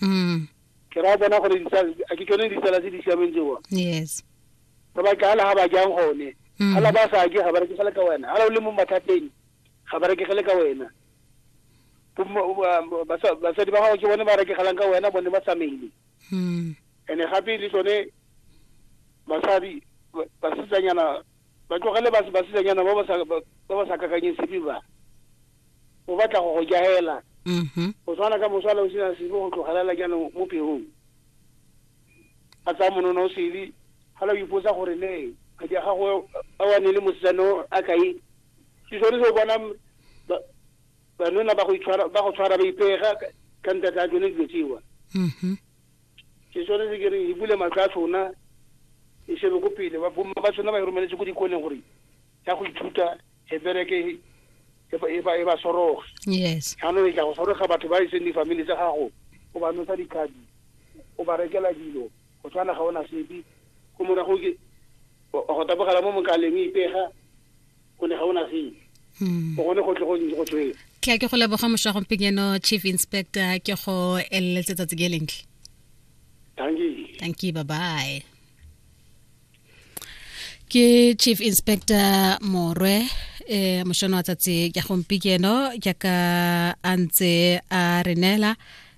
mm. ke ra bona gore a ke tsone ditsala tse di siameng tseo yes ba ba ka la ba jang gone mm. hala ba sa ke ga ba re ke ka wena hala o le mo mathateng ga ba re ke ka wena basadi ba gago ke bone ba rekegelang ka wena bone ba tsamaile hmm. and-e gape le tsone basadi basetsanyana Ba tlogele bas, basetsanyana ba ba sa, ba, ba ba sa kakanyeng sepe ba. O batla go go jaela. Mhm. Go tshwana ka mosala o sena sepe go tlogelela jaanong mo peong. A tsaya monona o sele, gala o ipotsa gore ne madi a gago a wa ne le mosetsana o a kae. Ke sone se o bonang ba, banona ba go itshwara, ba go tshwara ba ipega ka, ka ntatla a tsone dilo tsewa. Mhm. ke tshwanetse ke re e bule matlho a tsona e shebe ko pele bomma ba tsona ba e romeletse ko dikoleng gore ya go ithuta e bereke e ba soroge yes jaanong e tla go soroga batho ba e seng difamily tsa gago o ba nosa dikgabi o ba rekela dilo go tshwana ga ona sepe go morago ke go tabogela mo mokaleng e ipega go ne ga o na sele hmm. o gone go tle go tswela ke a ke go leboga mošwa gompenyeno chief inspector ke go eleletse tsatsi ke lentle thank you thank you bye bye ke chief inspector morwe eh mošono wa tsatsi ya gompikeno jaaka a ntse a re neela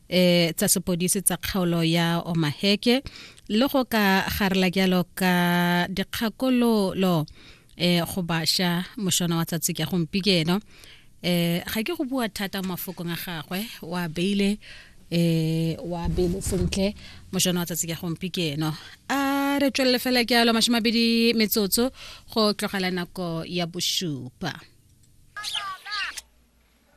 eh tsa sepodisi tsa kgaolo ya omaheke le go ka garela jalo ka dikgakololo eh go basha moshona wa tsatsi ke gompikeno eh ga ke go bua thata mo mafokong a gagwe wa beile eh wa beile sentle moshona wa tsatsi ke gompikeno a re tswelele fela ke alo mashimabedi metsotso go tlogela nako ya bosupa